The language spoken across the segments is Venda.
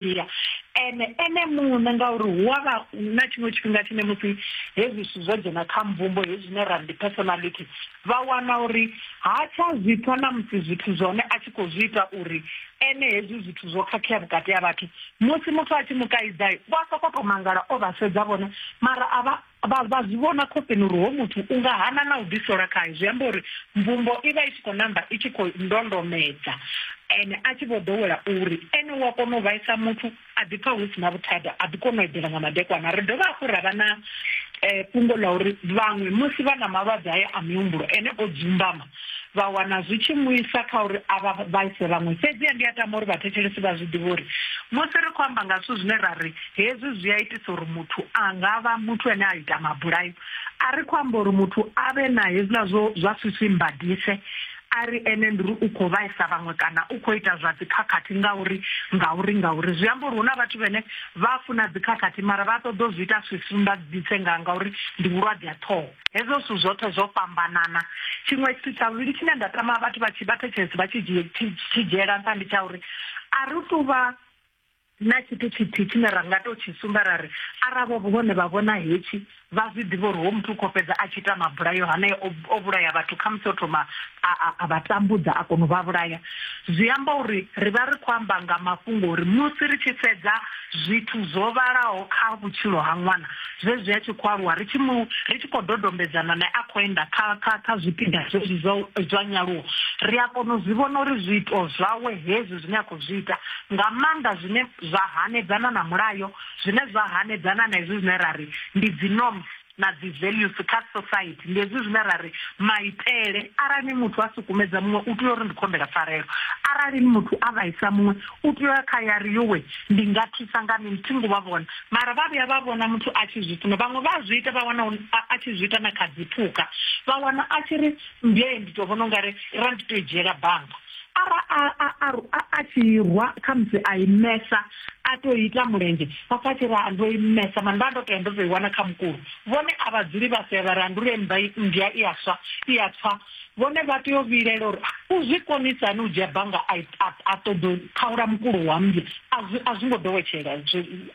ya ene ene muṋe ngauri hu a vha na tshiṅwe tshifhinga tshine musi hezwi zwithu zwo dzhena kha mvumbo hezwi zwine ra ndi personality vha wana uri ha tsha zwi pfha na musi zwithu zwone a tshi khou zwi ita uri ene hezwi zwithu zwo khakhea vhukati ha vhathu musi muthu a tshi mu kaidza vha sokou tou mangala o vha sedza vhone mara a vha Vha vha zwi vhona khofheni uri hoyu muthu u nga hana na u ḓisola khae, zwi amba uri mvumbo i vha i tshi khou namba i tshi khou ndondomedza ene a tshi vho ḓowela uri ene u a kona u vhaisa muthu a ḓipfa hu si na vhuthada, a ḓi kona u eḓela nga madekwana. Ri dovha hafhu ra vha na fhungo ḽa uri vhaṅwe musi vha na malwadze haya a mihumbulo ene o dzumbama, vha wana zwi tshi mu isa kha uri a vha vhaise vhaṅwe. Fhedziha ndi a tama uri vhathetshelesi vha zwi ḓivhe uri musi ri khou amba nga zwithu zwine ra ri hezwi zwi a itisa uri muthu a nga vha muthu ane a ita mabulayo, a ri khou amba uri muthu a vhe na hezwiḽa zwo zwa swifwimbadise a ri ene ndi uri u khou vhaisa vhaṅwe kana u khou ita zwa dzikhakhathi ngauri ngauri ngauri. Zwi amba uri hu na vhathu vhane vha funa dzikhakhathi mara vha ṱoḓa u zwi ita swifwimbadise nga ngauri ndi vhulwadze ha ṱhoho. Hezwo zwithu zwoṱhe zwo fhambanana. Tshiṅwe tshithu tsha vhuvhili tshine nda tama vhathu vha tshi vha thetshelesi vha tshi dzhie tshi tshi dzhiela nṱha ndi tsha uri a ri tu vha na tshithu tshithihi tshine ra nga tou tshi sumba ra ri arali vho vhone vha vhona hetshi vha zwi ḓivha uri ho muthu u khou fhedza a tshi ita mabulayo hanea o o vhulaya vhathu khamusi o thoma a a a vha tambudza a kona u vha vhulaya. Zwi amba uri ri vha ri khou amba nga mafhungo uri musi ri tshi sedza zwithu zwo vhalaho kha vhutshilo ha ṅwana zwezwi a tshi khou aluwa ri tshi mu ri tshi khou dodombedzana nae a khou enda kha kha kha zwipiḓa zwezwi zwa zwa nyaluwo ri a kona u zwi vhona uri zwiito zwawe hezwi zwine a khou zwi ita nga maanḓa zwine zwa hanedzana na mulayo zwine zwa hanedzana na hezwi zwine ra ri ndi dzi norms na dzi values kha society ndi hezwi zwine ra ri maitele arali muthu a sukumedza muṅwe u tea uri ndi khombela pfarelo arali ni muthu a vhaisa muṅwe u tea ya kha yari yowe ndi nga thusa nga mini thi ngo vha vhona mara vha vhuya vha vhona muthu a tshi zwi funa vhaṅwe vha zwi ita vha wana a tshi zwi ita na kha dziphukha vha wana a tshi ri mbee ndi to vhona ungari ra ndi to i dzhiela banga ara a a a a tshi rwa khamusi a imesa a to ita mulenzhe vha pfa tshi ra ndo imesa mani vha ndo to ya ndo to i wana kha mukulu vhone a vha dzuli vha sea vha ra ndi uri mmba mmbya i aswa i a pfa vhone vha tea u vhilela uri ah, u zwi konisa hani u dzhia banga a ṱoḓo khaula mukulu wa mmbya a zwi ngo ḓowetshela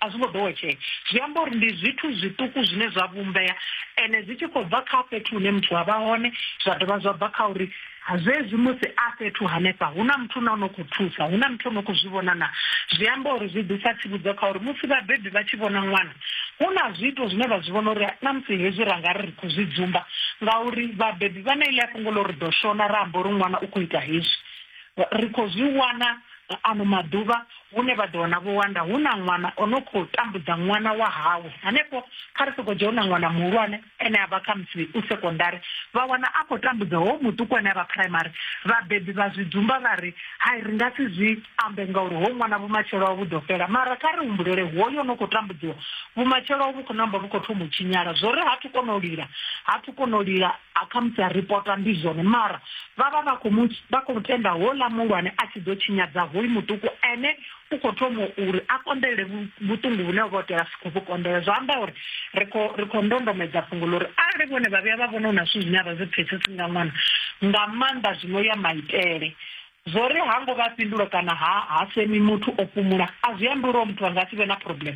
a zwi ngo ḓowetshela zwi amba uri ndi zwithu zwiṱuku zwine zwa vhumbea ene zwi tshi khou bva kha fhethu hune muthu a vha hone zwa dovha zwa bva kha uri zwezwi musi a fhethu hanefha hu na muthu na no khou thusa hu na muthu no khou zwi vhona na zwi amba uri zwi ḓisa tsivhudzo kha uri musi vhabebi vha tshi vhona ṅwana hu na zwiito zwine vha zwi vhona uri na musi hezwi ra nga ri ri khou zwi dzumba ngauri vhabebi vha na ile a fhungo ḽa uri ḓo shona ra amba uri ṅwana u khou ita hezwi ri khou zwi wana ano maḓuvha hune vha ḓo wana vho wanda hu na ṅwana o no khou tambudza ṅwana wa hawe hanefho kha ri sokou dzhia hu na ṅwana muhulwane ene a vha khamusi u sekondari vha wana a khou tambudza ho muṱuku ane a vha phuraimari vhabebi vha zwi dzumba vha ri hai ri nga si zwi ambe ngauri ho ṅwana vhumatshelo ha vhu ḓo fhela mara kha ri humbulele hoyo no khou tambudziwa vhumatshelo ha vhu khou namba vhu khou thoma u tshinyala zwo ri ha thu kona u lila ha thu kona u lila a khamusi a ripota ndi zwone mara vha vha vha khou vha khou tenda ho ḽa muhulwane a tshi ḓo tshinyadza hoyu muṱuku ene u khou thoma uri a konḓelele vhuṱungu vhune vha tea si khou vhu konḓela zwa amba uri ri khou ri khou ndondomedza fhungo ḽo uri arali vhone vha vhuya vha vhona hu na zwithu zwine a vha zwi pfhesesi nga ṅwana nga maanḓa zwino ya maitele zwo ri ha ngo vha fhindula kana ha ha semi muthu o fhumula a zwi ambi uri muthu a nga si vhe na problem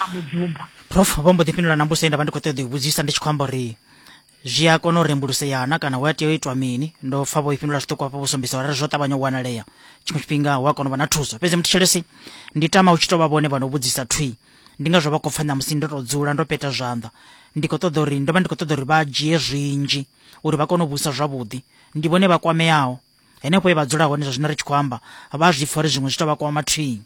a mudzumba prof vho mbo ḓi fhindula na mbuso ye nda vha ndi khou ṱoḓa u vhudzisa ndi tshi khou amba uri zwi a kona u rembuluseya na kana hu a tea u itwa mini ndo pfa vho i fhindula zwiṱuku hafho vho sumbedza uri zwo ṱavhanya u wanalea tshiṅwe tshifhinga hu a kona u vha na thuso fhedzi muthetshelesi ndi tama u tshi tou vha vhone vha no vhudzisa thwi ndi ngazwo vha khou pfa ṋamusi ndo tou dzula ndo peta zwanḓa ndi khou ṱoḓa uri ndo vha ndi khou ṱoḓa uri vha dzhie zwinzhi uri vha kone u vhusa zwavhuḓi ndi vhone vha kwameaho henefho ye vha dzula hone zwa zwino ri tshi khou amba vha zwi pfa uri zwiṅwe zwi tou vha kwama thwii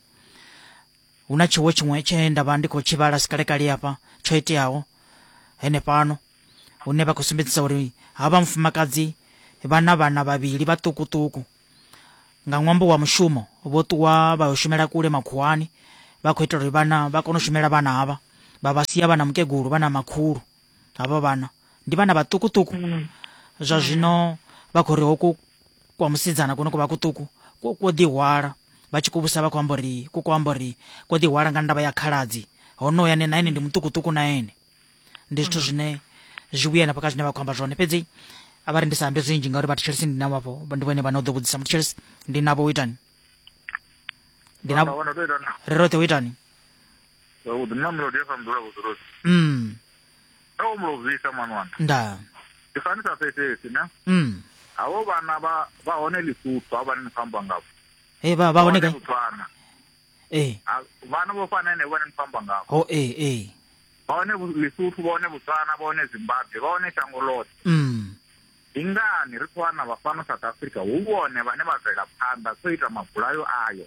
hu na tshiwo tshiṅwe tshe nda vha ndi khou tshi vhala sikalekale afha tsho iteaho henefhano hune vha khou sumbedzisa uri ha vha mufumakadzi vha na vhana vhavhili vhaṱukuṱuku nga ṅwambo wa mushumo vho ṱuwa vha yo shumela kule makhuwani vha khou itela uri vhana vha kone u shumela vhana havha vha vha sia vha na mukegulu vha na makhulu havho vhana ndi vhana vhaṱukuṱuku mm. zwa zwino vha khou ri hoku kwa musidzana kuno ku vha kuṱuku kwo ḓihwala vha tshi kuvhusa vha khou amba uri ku kho amba uri kwo ḓihwala nga ndavha ya khaladzi honoya ne na ene ndi muṱukuṱuku na ene ndi zwithu mm. zwine zwi vhuya nafha kha zwine vha khou amba zwone fhedzi a vha ri ndi sa ambe zwinzhi ngauri vhathu tshelisi ndi navho vhafho ndi vhone vhane u ḓo vhudzisa muthu tshelisi ndi navho u itani ndi navho ri roṱhe u itani u ḓi nna melodi ya sa mdzula vhuḓurosi mm. a wo mulovisa mwana wanga nda ndi fani sa fhesesi na mm. havo vhana vha vha hone lisutu ha vhane ni khou amba ngavho hey, vha vha hone botswana ee vhana vho fana ene vhane ni khou amba ngavho ho ee ee vha hone lisutu vha hone botswana vha hone zimbabwe vha hone shango loṱhe mm. ndi ngani ri khou wana vha fano south africa hu vhone vhane vha bvela phanḓa khou ita mabulayo ayo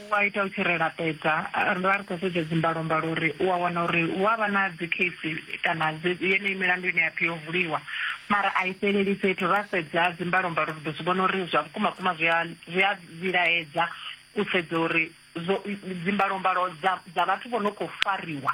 u a ita u tshi ri laṱedza. Ri vha ri khou sedza dzimbalombalo uri u a wana uri hu a vha na dzikhesi kana yeneyi milandu ine ya pfi yo vuliwa mara a i fheleli fhethu. Ra sedza dzimbalombalo ri ḓo zwi vhona uri zwa vhukuma vhukuma zwi a zwi a vhilaedza u sedza uri zwo dzimbalombalo dza dza vhathu vho no khou fariwa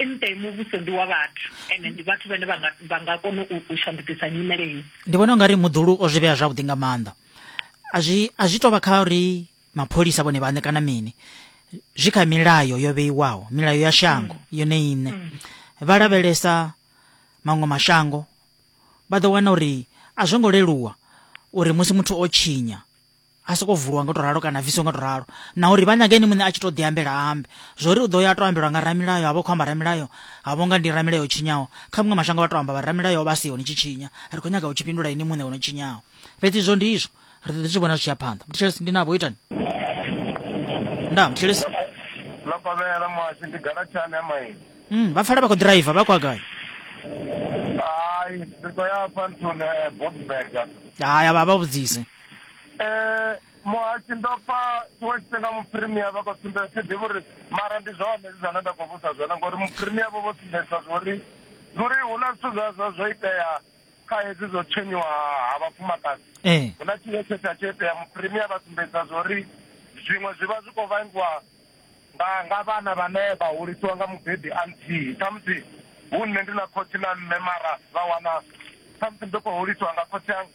Nṱe muvhuso ndi wa vhathu ende ndi vhathu vhane vha nga kona u shandukisa nyimele iyi. Ndi vhona ungari muḓulu o zwi vhea zwavhuḓi nga maanḓa a zwi a zwi tovha kha uri mapholisa vhone vhaṋe kana mini zwi kha milayo yo vheiwaho milayo ya shango mm. yone iṋe mm. vha lavhelesa maṅwe mashango vha ḓo wana uri a zwo ngo leluwa uri musi muthu o tshinya a soko vuliwa nga u to ralo kana bviswa nga u to ralo na uri vha nyaga ene muṋe a tshi to ḓiambela ambe zwo ri u ḓo ya a to ambelwa nga ramilayo ha vha khou amba ramilayo ha vho nga ndi ramilayo o tshinyaho kha muṅwe mashango vha to amba vha ramilayo vha siho ni tshi tshinya ri khou nyaga u tshi fhindula ene muṋe o no tshinyaho fhedzi izwo ndi izwo ri ḓo ḓi zwi vhona zwi tshi ya phanḓa muthelesi ndi navho itani nda muthelesi ḽa pavhela muhasho ndi galatshani ya maili mm, vha pfala vha khou ḓiraiva vha khou agai hai ri khou ya fhanthuni eh, bobsberg haya vha vha vhudzise Eh, muhasi ndo pfa tshiṅwe tshifhinga muphirimia vha khou sumbedza thi ḓivhi uri mara ndi zwone zwi zwine nda khou vhusa zwone ngori muphirimia vho vho sumbedzisa zwori zwori hu na zwithu zwa zwa zwo itea kha hedzi zwo tshenyiwa ha vhafumakadzi ee eh. hu na tshine tshe tsha tsho itea muphirimia vha sumbedzisa zwori zwiṅwe zwi vha zwi khou vhangiwa nga nga vhana vhane vha hulisiwa nga mubebi a nthihi khamusi hu nṋe ndi na khotsi na mme mara vha wana khamusi ndo khou hulisiwa nga khotsi anga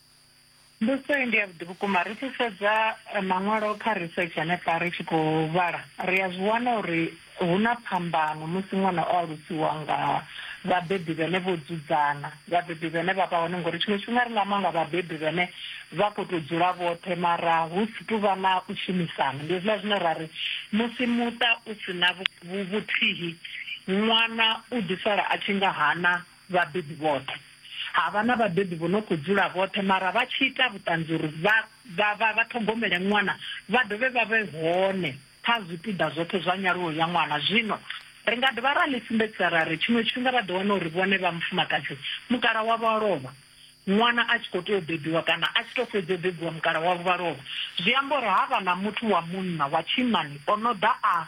Mbudziso iyi ndi ya vhuḓi vhukuma. Ri tshi sedza eh, maṅwalo kha research hanefha ri tshi khou vhala, ri a zwi wana uri hu na phambano musi ṅwana o alusiwa nga vhabebi vhene vho dzudzana, vhabebi vhene vha vha hone ngori tshiṅwe tshifhinga ri nga amba nga vhabebi vhene vha khou tou dzula vhoṱhe mara hu si tu vha na u shumisana. Ndi hezwiḽa zwine ra ri musi muṱa u si na vhu- vhu- vhuthihi ṅwana u ḓi sala a tshi nga hana Vhabebi vhoṱhe. Ha vha na vhabebi vho no khou dzula vhoṱhe mara vha tshi ita vhuṱanzi uri vha vha vha vha ṱhogomele ṅwana vha dovhe vha vhe hone kha zwipiḓa zwoṱhe zwa nyaluwo ya ṅwana. Zwino ri nga dovha ra ḽi sumbedzisa ra ri tshiṅwe tshifhinga vha ḓo wana uri vhone vha mufumakadzi mukala wavho a lovha ṅwana a tshi khou tea u bebiwa kana a tshi tou fhedza u bebiwa mukala wavho vha lovha. Zwi amba uri ha vha na muthu wa munna wa tshinnani o no ḓa a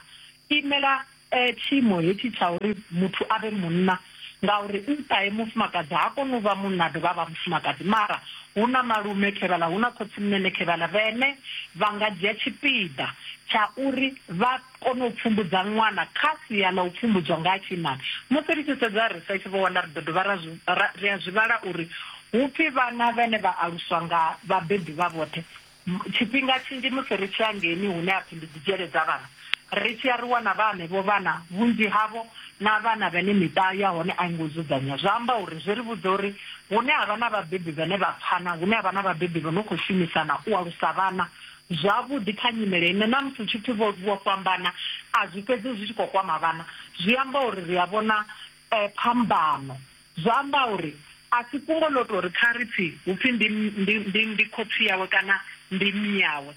imela Ee, tshiimo hetshi tsha uri muthu a vhe munna, ngauri u nṱha e mufumakadzi, ha koni u vha munna a dovha a vha mufumakadzi. Mara hu na malume khevhaḽa, hu na khotsimunene khevhaḽa, vhene vha nga dzhia tshipiḓa tsha uri vha kone u pfumbudza ṅwana kha sia ḽa u pfumbudzwa nga ha tshiimana. Musi ri tshi sedza ri sa tshivhonda, ri ḓo dovha ra zwi ra ri a zwi vhala uri hu pfi vhana vhene vha aluswa nga vhabebi vha vhoṱhe Tshifhinga tshinzhi musi ri tshi ya ngeni hune ha pfi ndi dzi dzhele dza vhana, ri tshi ya ri wana vha henevho vhana vhunzhi havho na vhana vhane miṱa ya hone a i ngo dzudzanyea. Zwa amba uri zwi ri vhudza uri hune ha vha na vhabebi vhane vha pfana, hune ha vha na vhabebi vho no khou shumisana u alusa vhana zwavhuḓi kha nyimele ine na musi hu tshi pfi vho fhambana a zwi fhedzi zwi tshi khou kwama vhana, zwi amba uri ri a vhona phambano. Zwo amba uri a si fhungo ḽo tou ri kha ri pfi hu pfi ndi, ndi, ndi, ndi khotsi yawe kana ndi mme yawe.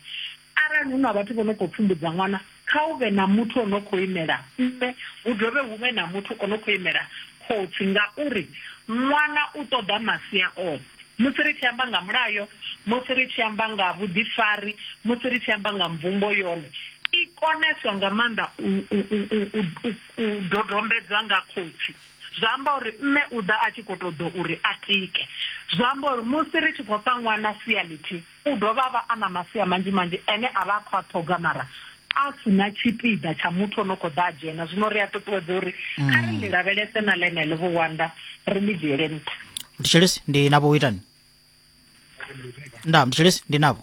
Arali hu na vhathu vho no khou pfumbudza ṅwana, kha hu vhe na muthu o no khou imela mme, hu dovhe hu vhe na muthu o no khou imela khotsi ngauri ṅwana u ṱoḓa masia oṱhe. Musi ri tshi amba nga mulayo, musi ri tshi amba nga vhuḓifari, musi ri tshi amba nga mvumbo yone i koneswa nga maanḓa u, u, u, u, u, u dodombedzwa nga khotsi. Zwa amba uri mme u ḓa a tshi khou tou ḓo uri a tike. Zwa amba uri musi ri tshi khou fha ṅwana sia ḽithihi, u dovha a vha a na masia manzhi-manzhi ane a vha a khou a ṱhoga mara a si na tshipiḓa tsha muthu o no khou ḓa a dzhena. Zwino ri a ṱuṱuwedza uri kha ri ḽi lavhelese na ḽeneḽo vhuwanda, ri ḽi dzhiele nṱha. Mthetshelesi, ndi navho u itani? Ndaa, mthetshelesi, ndi navho.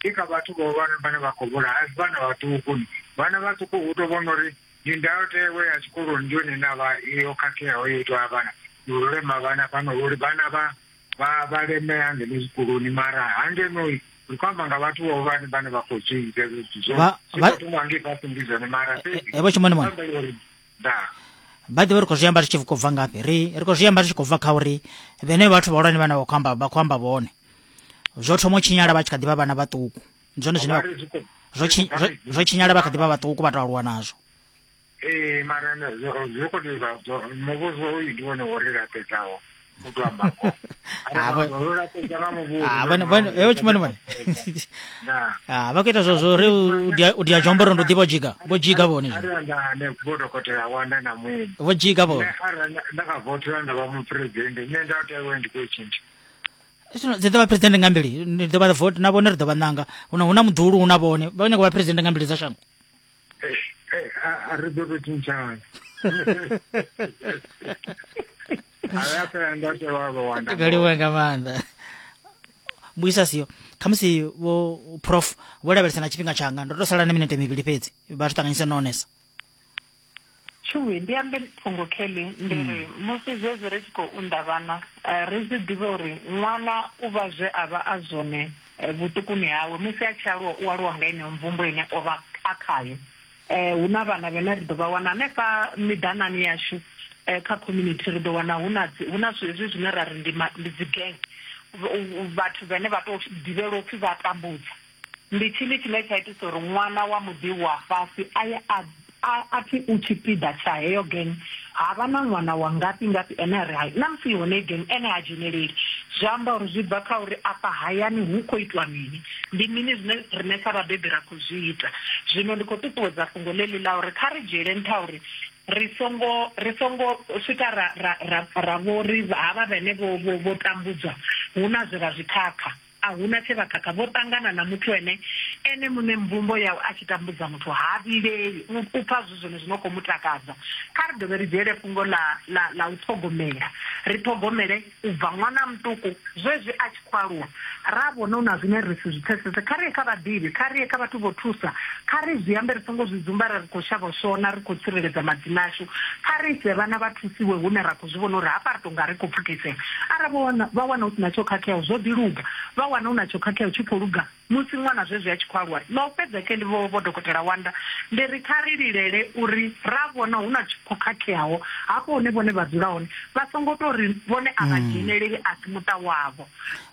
Ndi kha vhathu vhahulwane vhane vha khou vhulaha, a si vhana vhaṱuku. Vhana vhaṱuku hu tou vhona uri ndi ndayotewa ya tshikoloni ndi yone ine a vha yo khakheaho yo itwa vhana ndi u lema vhana fhano uri vhana vha vha vha lemea ngeno zwikoloni mara hangenoi ri khou amba nga vhathu vhahulwane vhane vha khou zwi ita hezwo zwithu zwo Vha- zwi vha- khou thoma ngei fhasi ndi zwone mara fhedzi Eh, eh, vho Shumani Mwana. amba uri by the way ri khou zwi amba ri tshi khou bva ngafhi ri ri khou zwi amba ri tshi khou bva kha uri vhene vhathu vhahulwane vhane vha khou amba vha khou amba vhone zwo thoma u tshinyala vha tshi kha ḓi vha vhana vhaṱuku ndi zwone zwine zwo tshinyala vha kha ḓi vha vhaṱuku vha tou aluwa nazwo ee mara zwi khou tea muvhuso u ndi wone wo ri laṱedzaho vakuita zvozvo ri udya chomboro ndodhi vojiga vojiga voni vojiga voni dzi ḓo vha president nga mbili ndi ḓo vha vote na vhone ri ḓo vha ṋanga huna muḓulu huna vhone vha nyako vha president nga mbili dza shango a ri ḓo to tshintshana kaliwa nga maanḓa mbuisa siyo khamusi vho prof vho lavhelesa na tshifhinga tshanga ndo to sala na minete mivhili fhedzi vha zwi ṱanganyisa no onesa Tshuwi, ndi ambe fhungo Kelly, ndi ri, musi zwezwi ri tshi khou unḓa vhana, ri zwi ḓivhe uri ṅwana u vha zwe a vha a zwone vhuṱukuni hawe. Musi a tshi aluwa, u aluwa nga yeneyo mvumbo ine o vha a khayo. Hu na vhana vhane ri ḓo vha wana hanefha miḓanani yashu, kha community, ri ḓo wana hu na dzi, hu na zwezwi zwine ra ri ndi ma, ndi dzi gang, vhathu vhane vha tou ḓivhelwa u pfi vha a tambudza. Ndi tshini tshine tsha itisa uri ṅwana wa muḓi wa fhasi a ye a a a pfi u tshipiḓa tsha heyo gang? Ha vha na ṅwana wa ngafhi-ngafhi ane a ri hai, na musi i hone heyi gang, ene ha dzheneleli. Zwi amba uri zwi bva kha uri afha hayani hu khou itwa mini, ndi mini zwine riṋe sa vhabebi ra khou zwi ita. Zwino ndi khou ṱuṱuwedza fhungo ḽeḽi ḽa uri kha ri dzhiele nṱha uri ri songo ri songo swika ra ra ra ra vho ri havha vhene vho vho vho tambudzwa hu na zwe vha zwi khakha. A hu na tshe vha khakha, vho ṱangana na muthu ene ene muṋe. Mvumbo ya u a tshi tambudza muthu ha vhileli, u u pfa zwi zwone zwi no khou mu takadza. Kha ri dovhe ri dzhiele fhungo ḽa ḽa ḽa u ṱhogomela, ri ṱhogomele u bva ṅwana a muṱuku zwezwi a tshi khou aluwa. Ra vhona hu na zwine ri si zwi pfesese, kha ri ye kha vhaḓivhi, kha ri ye kha vhathu vho thusa. Kha ri zwi ambe ri songo zwi dzumba ri ri khou shavha u shona, ri khou tsireledza madzina ashu. Kha ri ise vhana vha thusiwe hune ra khou. zwi vhona uri hafha ri tou nga ri khou pfukisea. Arali vho wana, vha wana hu si na tsho khakheaho, zwo ḓi luga. Vha wana hu na tsho khakheaho tshi khou luga, musi ṅwana zwezwi a tshi khou aluwa. Ḽa u fhedza khe ndi vho, vho Dokotela Wanda, ndi ri kha ri lilele uri ra vhona hu na tshi khou khakheaho hafho hune vhone vha dzula hone. Vha songo tou ri vhone a vha dzheneleli, a si muṱa wavho.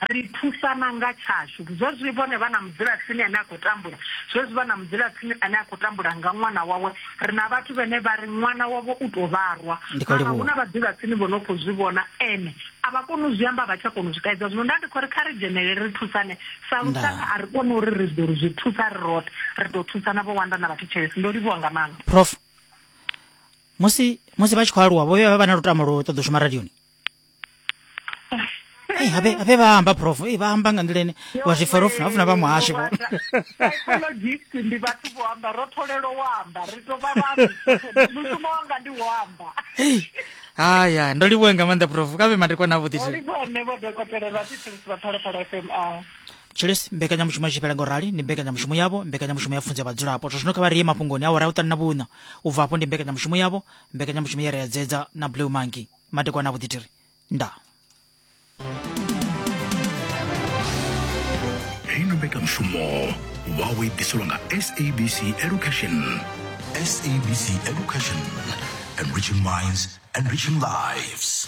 Ri thusana nga tshashu. Zwezwi vhone vha na mudzulatsini ane a khou tambula, zwezwi vha na mudzulatsini ane a khou tambula nga ṅwana wawe, ri na vhathu vhene vha ri ṅwana wavho u tou vharwa mara hu na vhaḓivhatsini vho no khou zwi vhona ene a vha koni u zwi amba vha tsha kona u zwi kaidza zwino nda ndi khou ri kha ri dzhenelele ri thusane sa lushaka a ri koni uri ri ḓo ri zwi thusa ri roṱhe ri ḓo thusana vho wanda na vhathu tshelesi ndo livhuwa nga maanḓa prof musi musi vha tshi khou aluwa vho vha vha na lutamo lwo ṱoḓa u shuma radioni Hey, habe habe vahamba prof hey, vahamba nga nḓila ine wa zwi fara ufuna ufuna vha muhasho psychologist ndi vhathu vho amba ro tholelo wa amba ri to vha vha mushumo wanga ndi wo amba haya ndo livhuwe nga maanḓa prof kave madekwa na vhuḓi ne vho dokotela vha thithusi vha phalaphala fm a chiles mbekanyamushumo ya tshifhela ngo rali ndi mbekanyamushumo yavho mbekanyamushumo ya funza vhadzulapo zwa zwino kha vha rie mafhungoni awara ya u ṱanu na vhuṋa u bva afho ndi mbekanyamushumo yavho mbekanyamushumo ya ri adzedza na blue monkey madekwana avhuḓi tiri nda hei na mbekanyamushumo wawe i ḓiselwa nga sabc education sabc education enriching minds enriching lives